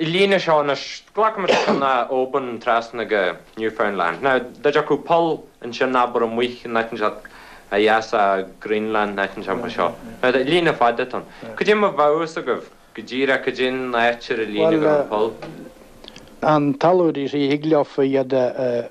I líne seo anois, glacaimis leis an Oban trasna go Newfoundland. Dá dtiocfadh poll ansin abair amuigh in áit inteacht ó dheas de Greenland in áit inteacht mar seo. Ná deir líne fada ann. Cad é mar a bheadh a fhios agaibh go díreach cad é an áit ar an líne go raibh an poll. Bhuel, an tailliúir is í thig leofa iad a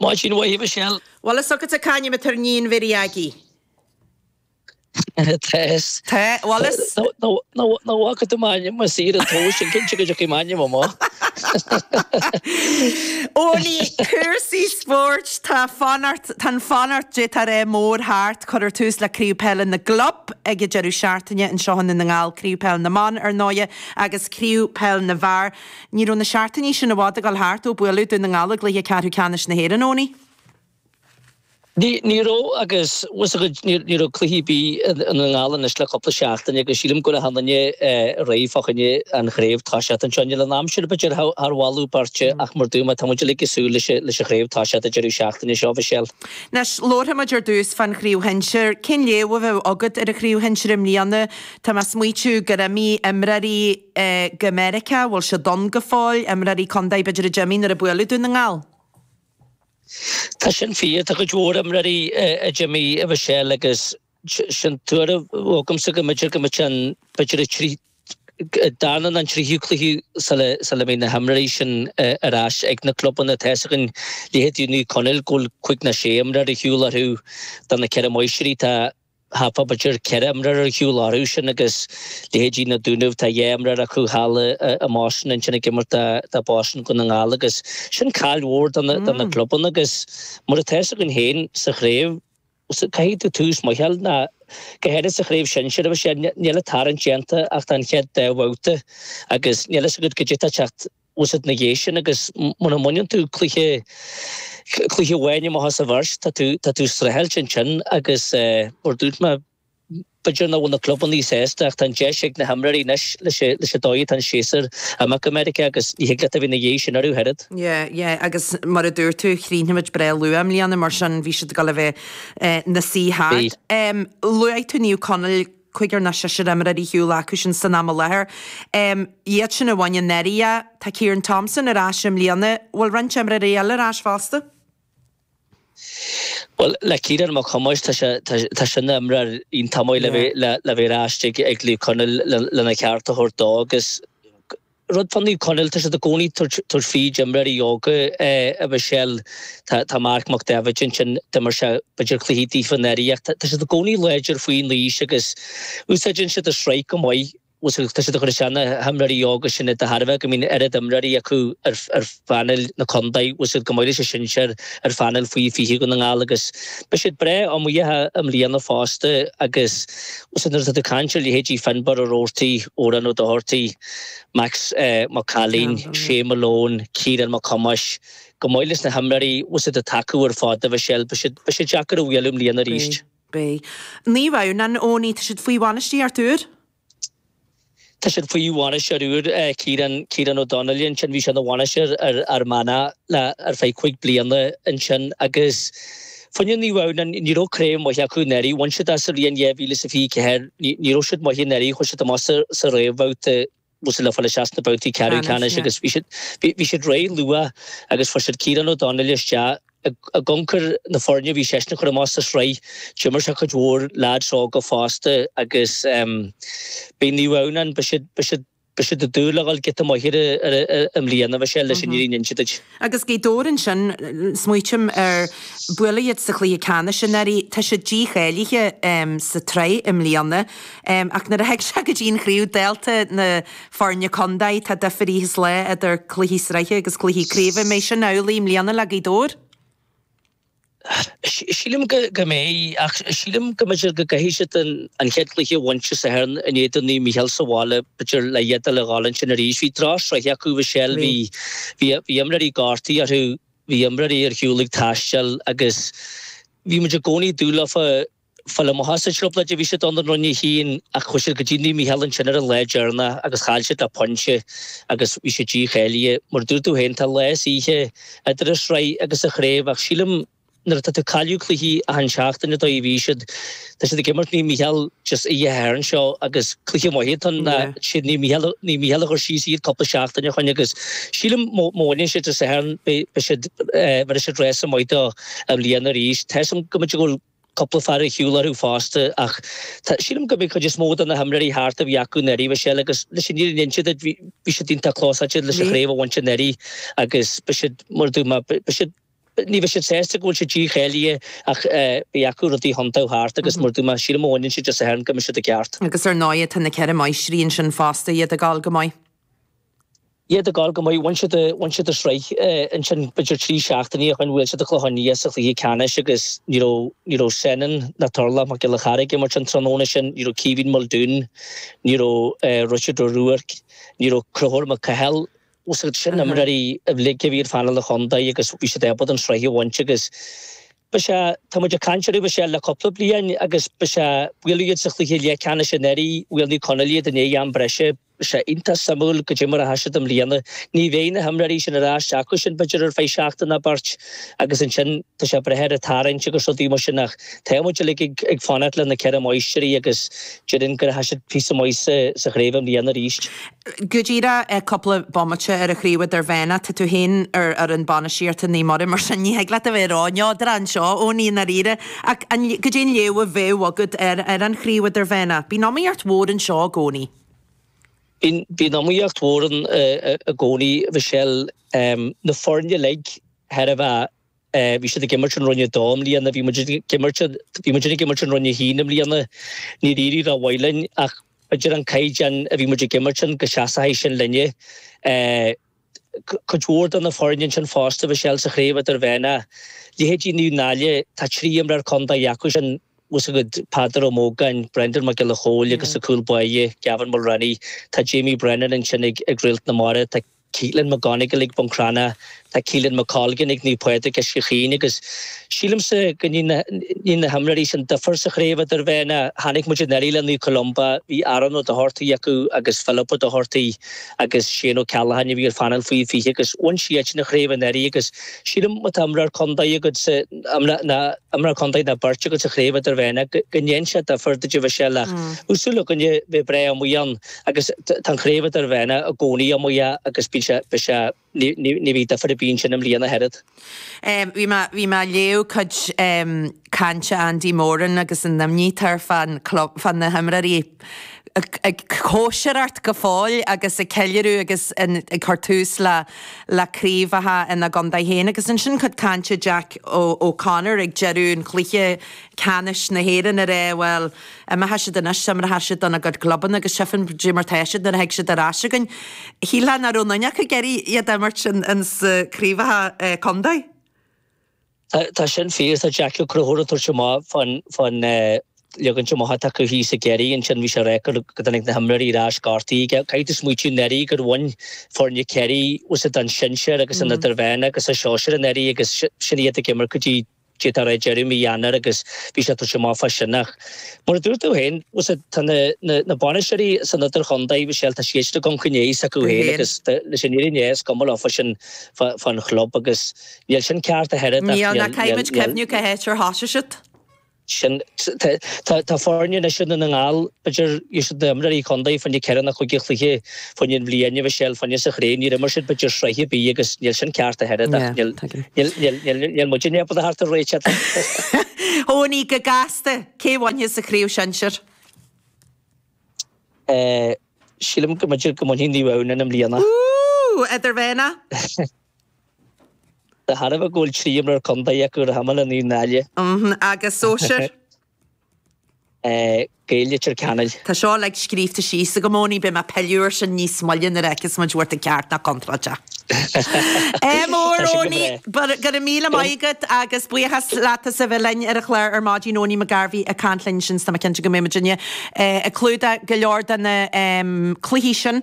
Maith sin uaithi, Michelle. Bhfuil a fhios agat cén t-ainm atá ar níon mhiri aigí. Tá a fhios. Tá, bhfuil a fhios. Ná bhfaca tú m'ainm i saor an tomhais sin, cinnte go dtiocfaidh m'ainm amuigh. Ólaí, cúrsaí spóirt, tá, tá an fanacht di, tá ré mór thart, cuirfear tús le Craobh Peile na gClub ag an deireadh seachtaine, anseo i nDún na nGall, Craobh Peile na mBan ar ndóighe agus Craobh Peile na bhFear. Ní raibh na seachtainí sin i bhfad ag dul thart ó buaileadh Dún na nGall i gcluiche ceathrú ceannais na hÉireann, Eoin. Ní raibh agus, tá a fhios agat, ní raibh cluiche ar bith i nDún na nGall anois le cúpla seachtain agus sílim go bhfuil achan duine réidh fá choinne an chraobh toiseacht anseo. Níl an aimsir b'fhéidir thar mholadh beirte ach mar a dúirt mé tá muid uilig ag súil leis an chraobh toiseacht an deireadh seachtaine seo, Mhichelle. Anois, labharfaimid ar dtús fán chraobh shinsir. Cén léamh a bheadh agat ar an chraobh shinsir i mbliana? Tá mé ag smaoitiú gur imigh imreoirí. go Meiriceá, bhfuil siad ann go fóill? Imreoirí contae b'fhéidir a d'imigh nuair a buaileadh Dún na nGall. Tá sin fíor, tá cuid mhór imreoirí a d'imigh, a Mhichelle agus sin tuairim agamsa go mb'fhéidir go mbeadh an, b'fhéidir an darna nó an tríú cluiche sula mbeidh na himreoirí sin ar ais ag na clubanna. Tá a fhios againn, leithéidí Naomh Conaill, go bhfuil cúig nó sé imreoir ar shiúl orthu tá na Ceithre Máistrí. Tá. hapa, b'fhéidir ceithre imreoir ar shiúl orthu sin agus leithéidí na Dúnaibh, tá dhá imreoir acu thall i mBoston ansin ag imirt do Boston Dhún na nGall agus sin caill mhór do na clubanna agus mar atá fhios againn féin sa chraobh, caithfidh tú tús maith a fháil ná go háirithe sa chraobh shinsir agus níl an tarraingt déanta ach don chéad dá bhabhta agus níl a fhios agat cad é atá ag teacht. chugat ina dhiaidh sin agus mura mbaineann tú cluiche cluiche amháin amach as an bheirt, tá tú tá tú ag streachailt ansin agus mar dúirt mé, b'fhéidir nach bhfuil na clubanna sásta ach tá an deis ag na himreoirí anois leis an leis an dóigh atá an séasúr amach go Meiriceá agus ní thig leat a bheith ina dhiaidh sin orthu ach oiread. Yeah, yeah, agus mar a dúirt tú, chríochnaigh muid breá luath i mbliana mar sin bhí siad ag dul a bheith ina suí thart. Bhí. Luaigh tú Naomh Conaill, cúigear nó seisear imreoir ar shiúl acu sin san am i láthair. Iad sin a bhain anuraidh é. Tá Ciarán Thompson ar ais i mbliana. Bhfuil roinnt imreoirí eile ar ais fosta? Bhuel, le Ciarán Mac Thomáis, tá sé, tá sé ina imreoir iontach maith le bheith ar ais ag Naomh Conaill lena cheart a thabhairt dó agus. Rud fá Naomh Conaill, tá siad i gcónaí ag tabhairt fríd imreoirí óga, a Mhichelle. Tá Marc Mac David ansin, d'imir sé b'fhéidir cluichí daofa anuraidh ach tá siad i gcónaí láidir faoin aois agus úsáideann siad an sraith go maith. Tá siad ag cur isteach na himreoirí óga sin de thairbhe ach go mbíonn oiread imreoirí acu ar phainéil na contae, bhfuil siad chomh maith leis an sinsear ar phainéil faoi 20 Dhún na nGall agus beidh siad breá iomaíoch i mbliana fosta agus nuair atá tú ag caint ar leithéidí Finbarr Roarty, Odhrán Doherty, Max Mac Cailín, Shay Malone, Ciarán Mac Thomáis, chomh maith leis na himreoirí fosta atá acu ar fad a Mhichelle. Beidh siad beidh siad deacair a bhualadh i mbliana arís. Beidh. Naomh Adhamhnáin, Eoiní, tá siad faoi bhainistíocht úr? Tá siad faoi bhainisteoir úr, Ciarán Ciarán Ó Donnaile ansin bhí sé ina bhainisteoir ar Fhear Manach le ar feadh cúig bliana ansin agus Foireann Naomh Adhamhnáin, Ní raibh craobh mhaith acu anuraidh. Bhain siad í sa bhliain 2024. Ní raibh siad maith anuraidh, chuaigh siad amach sa réamhbhabhta usa le fáil isteach sna babhtaí ceathrú ceannais agus bhí siad réidh luath agus fuair siad Ciarán Ó Donnaile isteach ag amhanc ar na foirne a bhí seisean a chur amach sa sraith. D'imir sé cuid mhór leaids óga fosta agus beidh Naomh Adhamhnáin, beidh siad, beidh siad. Beidh siad ag dúil le dhul giota maith ar aghaidh i mbliana, bheadh sé leis an fhírinne a insint duit. Agus Gaoth Dobhair ansin, smaoitim ar, buaileadh iad sa chluiche ceannais anuraidh, tá siad dícháilithe sa tsraith i mbliana ach nuair a thig sé go dtí an chraobh, dálta na foirne contae, tá difir oíche is lae idir cluichí sraithe agus cluichí craoibhe. An mbeidh sin amhlaidh i mbliana le Gaoth Dobhair? Sílim go mbeidh, ach sílim go mb'fhéidir go gcaithfidh siad an chéad chluiche a bhaint Dé Sathairn in éadan Naomh Micheál sa bhaile, b'fhéidir le hiad dul a dháil ansin arís. Bhí drochshraith acu, a Mhichelle, bhí bhí imreoirí gortaithe orthu, bhí imreoirí ar shiúl ag taisteal agus bhí muid i gcónaí ag dúil leofa. Fáil amach as an trioblóid a bhí siad ann, an Roinn a hAon, ach chuaigh siad go dtí Naomh Mícheál ansin ar an lá deireanach agus chaill siad le pointe agus bhí siad dícháilithe. Mar a dúirt tú féin, tá lá is oíche idir an sraith agus an chraobh ach sílim nuair atá tú ag cailleadh cluichí achan seachtain an dóigh a bhí siad, tá siad ag imirt Naomh Mícheál just oíche Shathairn seo agus cluiche maith iad, tá na, is iad Naomh Mícheál, Naomh Mícheál a chuir síos iad cúpla seachtain ó shoin agus sílim má bhaineann siad an Satharn beidh, beidh siad, bhéarfaidh siad rása maith dó i mbliana arís. Tá 'fhios a'm go mb'fhéidir go bhfuil. Cúpla fear ar shiúl uathu fosta ach tá, sílim go mbeidh cuid is mó de na himreoirí thart a bhí acu anuraidh, a Mhichelle, agus leis an fhírinne a inse duit, bhí siad iontach clósáilte leis an chraobh a bhaint anuraidh agus beidh siad, mar a dúirt mé, beidh siad, ní bheidh siad sásta go bhfuil siad dícháilithe ach beidh acu rudaí a thiontú thart agus mar a dúirt mé, sílim má bhaineann siad Dé Sathairn go mbeidh siad i gceart. Agus ar ndóigh tá na Ceithre Máistrí ansin fosta iad ag gabháil go maith. iad ag gabháil go maith. Bhain siad an sraith ansin, b'fhéidir trí seachtainí ó shin bhuail siad an Clochán Liath sa chluiche ceannais agus ní raibh Seánan ná Torlach Mac Giolla Cheara ag imirt an tráthnóna sin, ní raibh Caoimhín Muldoon, ní raibh Richard Ó Ruairc, ní raibh Conchúr Mac Cathail. Sin imreoirí uilig a bhí ar phainéal an chontae agus bhí siad ábalta an sraith a bhaint agus ba é, tá muid ag caint orthu, b'fhéidir le cúpla bliain agus ba é, bhuail iad sa chluiche leathcheannais anuraidh, bhuail Naomh Conaill iad i ndiaidh am breise. sé iontach suimiúil goidé mar a théann siad i mbliana, ní bheidh na himreoirí sin ar ais acu sin b'fhéidir ar feadh seachtain ná beirt agus ansin tá sé ag brath ar an tarraingt agus rudaí mar sin ach tá muid uilig ag fanacht le na Ceithre Máistrí agus déarfainn go rachaidh siad píosa maith sa chraobh i mbliana arís. Go díreach cúpla bomaite ar an chraobh idirmheánach, tá tú féin ar an bhainistíocht ag Naomh Muire mar sin ní thig leat a bheith róneodrach anseo Owenie i ndáiríre ach goidé an léamh a bheadh agad ar an chraobh idirmheánach bíonn iomaíocht mhór anseo i gcónaí. Bíonn iomaíocht mhór ann i gcónaí, Michelle. Na foirne uilig, chóir a bheith, bhí siad ag imirt i Roinn 2 i mbliana, bhí muid ag imirt, bhí muid ag imirt i Roinn 1 i mbliana, níor éirigh rómhaith linn ach b'fhéidir an caighdeán a bhí muid ag imirt ann go seasfaidh sin linne. cuid mhór de na foirne ansin fosta Michelle sa chraobh idirmheánach, leithéidí Naomh Náille, tá trí imreoir contae acu sin os a gcuid, Peadar Ó Mógáin, Brendan Mac Giolla Chóill agus sa chúl báire, Gavin Mulreany, tá Jamie Brennan ansin ag Réalt na Mara, tá Caolan McGonagle ag Bun Cranncha, tá Caolan McColgan ag Naomh Pádraig Uisce Chaoin agus sílimse go ndéanann na himreoirí sin difear sa chraobh idirmheánach, chonaic muid anuraidh le Naomh Columba, bhí Aaron Ó Dochartaigh acu agus Philip Ó Dochartaigh. agus Shane Ó Ceallacháin a bhí ar phainéal faoi 20 agus bhain siadsan an chraobh anuraidh agus sílim, má tá imreoir contae agat sa, ná imreoir contae ná beirt agat sa chraobh idirmheánach, go ndéanann sé difear duit Michelle ach bheadh súil againne bheith breá iomaíoch ann agus tá an chraobh idirmheánach i gcónaí iomaíoch agus bíonn sé, bhí sé. Ní bheidh difear ar bith ansin i mbliana ach oiread. Bhí mé, bhí mé ag léamh cuid cainte Andy Moran agus an imní atá air fán club, fá na himreoirí, ag cóisireacht go fóill agus ag ceiliúradh agus ag cur tús le, le craobhacha ina gcontae féin. Agus ansin cuid cainte Jack O'Connor ag deireadh an chluiche ceannais na hÉireann ag rá, bhuel, imeoidh siad anois is imeoidh siad dona gcuid clubanna agus tchífidh muid goidé mar tá siad nuair a thig siad ar ais againn. Shílfeá nach raibh aon duine acu ag iarraidh iad a imirt ins na craobhacha contae. Tá sin fíor. Tá Jack Ó Conchúir ag tabhairt amach fán leagaint amach atá acu thíos i gCiarraí. Ansin bhí sé ag rá gur go dtáinig na himreoirí ar ais gortaithe aige. Caithfidh tú smaoitiú anuraidh gur bhain foirne Chiarraí, bhain siad an sinsear agus an idirmheánach agus an sóisear anuraidh agus sin iad ag imirt go dtí Go dtí deireadh mí Eanáir agus bhí sé ag tabhairt amach fá sin ach mar a dúirt tú féin, tá na bainisteoirí san idirchontae, bhí sé, tá sí éiste gan choinne aos acu féin agus leis an fhírinne é, is cuma leo fá sin fán chlub agus níl sin ceart ach oiread. Níl, nó caithfimid cuimhniú cá háit ar thosaigh siad. Sin, tá foirne anois i nDún na nGall, b'fhéidir, iad siad na himreoirí contae, fá choinne ceithre nó cúig chluiche Fá choinne na bliana a bhí sé fá choinne sa chraobh níor imir siad b'fhéidir sraith ar bith agus níl sin ceart ach oiread ach níl muidinne ábalta theacht ar réiteach faoi. Eoiní, go gasta! Cé bhainfeas an chraobh sinsear? Sílim go mb'fhéidir go mbainfidh Naomh Adhamhnáin i mbliana. Ooh! Idirmheánach? De thairbhe go bhfuil trí imreoir contae acu, rachaidh mé le Naomh Náille. Mh, agus sóisear? Gaeil Leitir Ceanainn. Tá seo uilig scríobhta síos agam, Eoiní, beidh mé ag pilleadh ar sin níos moille nuair a fheiceas muid an raibh tú ceart nó contráilte. M ór, Eoiní, go raibh míle maith agat agus buíochas leat as a bheith linn ar an chlár ar maidin, Eoiní McGarvey ag caint linn ansin, tá mé cinnte go mbeimid ag clúdach go leor de na cluichí sin.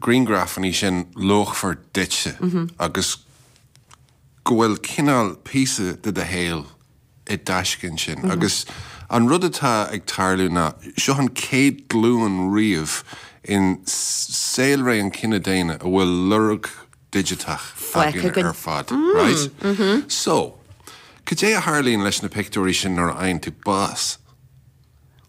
grianghrafanna sin luachmhar duitse agus go bhfuil cineál píosa de do shaol i dtaisce ansin. Agus an rud atá ag tarlú ná, seo an chéad ghlúin riamh i saolré an chine daonna a bhfuil lorg digiteach againn ar fad. Right? So, cad é a tharlaíonn leis na pictiúirí sin nuair a fhaigheann tú bás?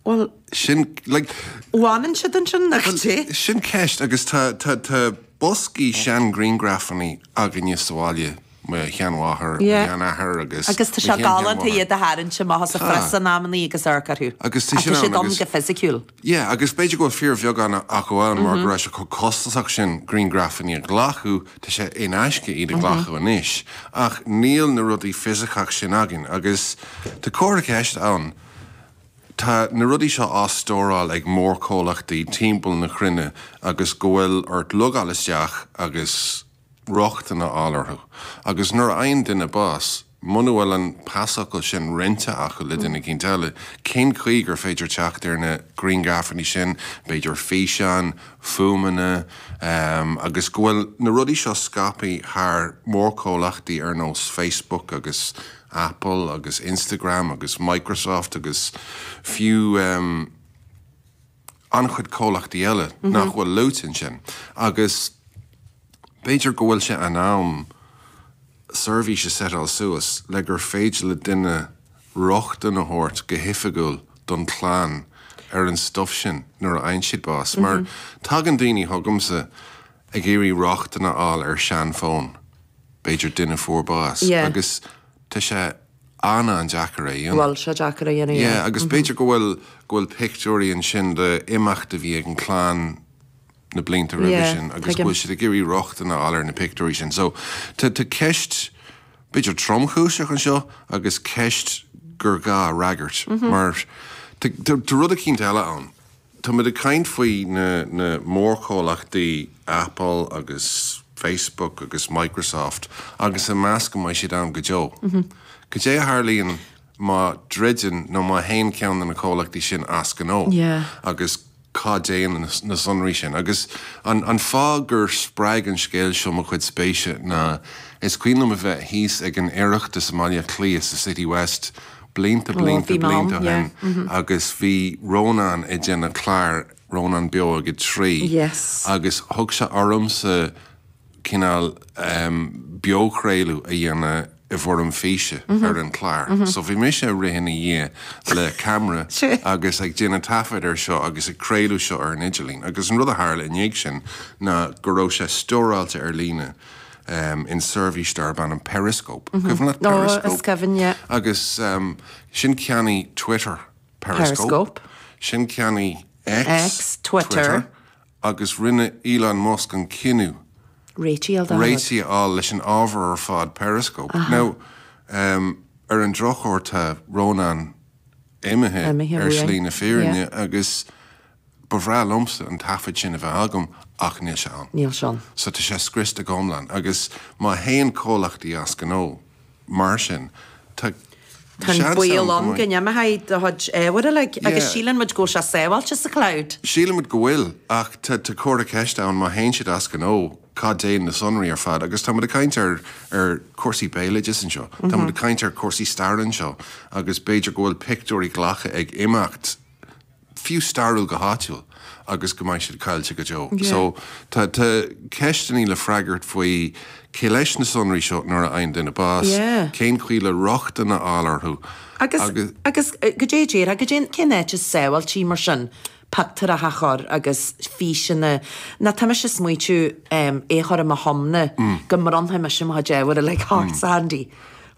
Bhuel, sin, like. Fanann siad ansin, nach ait é? Sin ceist agus tá boscaí seanghrianghrafannaí againne sa bhaile, mo sheanmháthair, mo sheanathair agus. Agus tá sé galánta iad a tharraingt amach as an phreas in amannaí agus amharc orthu. Agus tá siad ann go fisiciúil. Yeah, agus b'fhéidir go bhfuil fíorbheagán acu ann mar go raibh sé chomh costasach sin grianghrafannaí a ghlacadh, tá sé in aisce iad a ghlacadh anois, ach níl na rudaí fisiceacha sin againn agus tá comhartha ceiste ann. Tá na rudaí seo á stóráil ag mórchomhlachtaí timpeall na cruinne agus go bhfuil ort logáil isteach agus rochtain a fháil orthu. Agus nuair a fhaigheann duine bás, muna bhfuil an pasfhocal sin roinnte acu le duine éicínt eile, cén chaoi gur féidir teacht ar na grianghrafannaí sin, b'fhéidir físeáin, fuaimeanna, agus go bhfuil na rudaí seo scaipthe thar mórchomhlachtaí ar nós Facebook agus. Apple agus Instagram agus Microsoft agus fiú an-chuid comhlachtaí eile nach bhfuil luaite ansin. Agus b'fhéidir go bhfuil sé in am seirbhís a seiteáil suas le gur féidir le duine rochtain a thabhairt go hoifigiúil don chlann ar an stuif sin nuair a fhaigheann siad bás. Mar tagann daoine chugamsa ag iarraidh rochtain a fháil ar seanfhóin. b'fhéidir duine a fuair bás. Yeah. Agus tá sé an-an-deacair é a dhéanamh. Bhuel, seo deacair a dhéanamh, yeah. Yeah, agus b'fhéidir go bhfuil, go bhfuil pictiúirí ansin le imeacht a bhí ag an clann na blianta roimhe Yeah, sin agus tuigim. go bhfuil siad ag iarraidh rochtain a fháil ar na pictiúirí sin. So tá, tá ceist b'fhéidir tromchúiseach anseo agus ceist gur gá a fhreagairt mar tá, tá, tá rud eicínt eile ann. Táimid ag caint faoi na mórchomhlachtaí Apple agus Facebook agus Microsoft agus ag meas go mbeidh siad ann go deo. Cad é a tharlaíonn má dhruideann nó má théann ceann de na comhlachtaí sin as gnó agus cá dtéann na sonraí sin? Agus an fáth gur spreag an scéal seo mo chuid spéise ná is cuimhin liom a bheith thíos ag an Oireachtas i mBaile Átha Cliath sa Citywest blianta blianta blianta ó shin agus bhí Rónán ag déanamh clár Rónán Beo ag a Trí agus thug sé ormsa cineál beochraoladh a dhéanamh i bhfoirm físe ar an chlár. So bhí mise ag rith ina dhiaidh le camera agus ag déanamh taifead air seo agus ag craoladh seo ar an idirlíon agus an rud a tharla i ndiaidh sin ná go raibh sé stóráilte ar líne um in seirbhís darb ainm Periscope. Cuimhin leat Periscope? Ó, is cuimhin, yeah. Agus um ansin cheannaigh Twitter, Periscope. Ansin cheannaigh X, Twitter. Agus rinne Elon Musk an cinneadh. Réidh a fháil. Réidh a fháil leis an ábhar ar fad Periscope. Now um ar an drochuair tá Rónán imithe ar slí na fírinne agus Ba bhreá liomsa an taifead sin a bheith agam ach níl sé ann. Níl sé ann. So tá sé scriosta go hiomlán agus má théann comhlachtaí as gnó mar sin, tá seans ann go mbeidh. Tá an baol ann go n-imeoidh do chuid ábhar uilig agus síleann muid go bhfuil sé sábháilte sa cloud. Síleann muid go bhfuil ach tá comhartha ceiste ann, má théann siad as gnó, cá dtéann na sonraí ar fad agus tá muid ag caint ar chúrsaí béaloidis anseo, tá muid ag caint ar chúrsaí staire anseo agus b'fhéidir go bhfuil pictiúirí glactha ag imeacht. fiú stairiúil go háitiúil agus go mbeidh siad caillte go deo. So tá ceisteannaí le freagairt faoi cé leis na sonraí seo nuair a fhaigheann duine bás, cén chaoi le rochtain a fháil orthu agus. Agus goidé a déarfá, goidé, cén áit is sábháiltí mar sin pioctúireacha a chur agus físeanna ná tá mise a smaoitiú é a chur i mo thiomna go mbronnfaidh mise mo chuid ábhar uilig thart, 's handy.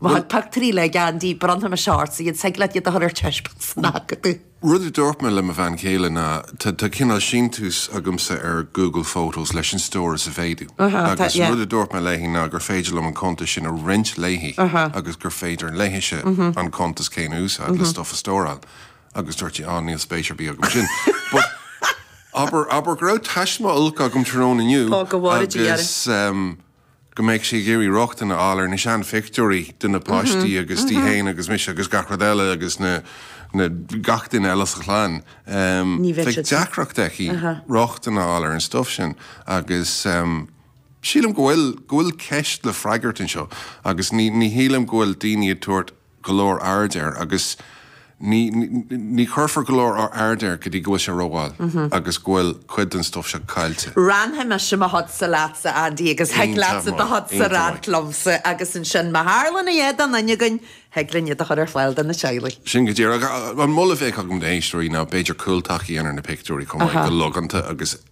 Bheadh pioctúirí le gean díobh, bronnfainn mo short, sa iad thig leat iad a chur ar taispeáint san Acadamh. Rud a dúirt mé le mo bhean chéile ná tá cineál síntiús agamsa ar Google Photos leis an stóras a mhéadú agus an rud a dúirt mé léi ná gur féidir liom an cuntas sin a roinnt léi agus gur féidir léithise an cuntas céanna a úsáid le stuff a stóráil agus dúirt sí, á, níl spéis ar bith agam ansin. But abair go raibh taisme olc agam tráthnóna inniu agus. go mbeidh sí ag iarraidh rochtain a fháil ar na seanphictiúirí de na páistí agus di féin agus mise agus gach rud eile agus gach duine eile sa chlann. Bheadh deacracht aici rochtain a fháil ar an stuif sin agus sílim go bhfuil ceist le freagairt anseo agus ní shílim go bhfuil daoine ag tabhairt go leor airde air agus ní chuirfear go leor airde air go dtí go bhfuil sé rómhall agus go bhfuil cuid den stuif seo caillte. Roinnfidh mise mo shodsa leatsa, Andy, agus thig leatsa do shodsa a roinnt liomsa agus ansin, má tharlann a dhath do dhuine againn, thig linn iad a chur ar fáil do na teaghlaigh. Sin go díreach. An moladh a bheadh agam d'éisteoirí ná b'fhéidir cúltaca a dhéanamh ar na pictiúirí chomh maith, go logánta agus,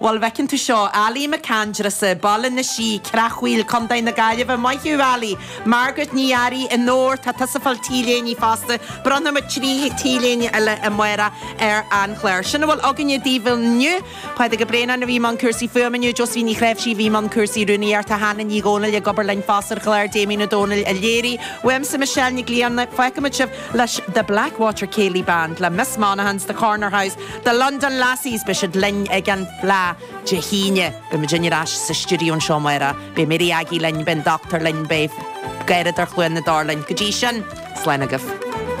Bhuel, bhfeiceann tú seo, Ailí MacAindreasa, Baile na Sí, Creachmhaoil, Co. na Gaillimhe, maith thú Ailí! Margaret Ní Fhearraigh, Onóir, tá tusa ag fáil t-léine fosta, bronnfaimid trí t-léine eile amárach ar an chlár. Sin a bhfuil againne daoibh inniu. Pádraig Ó Braonáin a bhí i mbun cúrsaí fuaime inniu, Josephine Ní Ghréibhsí a bhí i mbun cúrsaí rúnaíochta, Hannah Ní Dhomhnaill ag obair linn fosta ar an chlár, Damien Ó Dónaill a léirigh uaimse, Michelle Nic Grianna, fágfaimid sibh leis The Blackwater Céilí Band le Miss Monaghan's The Corner House, The London Lassies, Beidh siad linn ag an Fhleadh Dé hAoine. Beidh muidinne ar ais sa stiúideo anseo amárach. Beidh Mary Aggie linn, beidh an Dochtúir linn, beidh Garradóir Chluain na dTor linn. Go dtí sin, slán agaibh.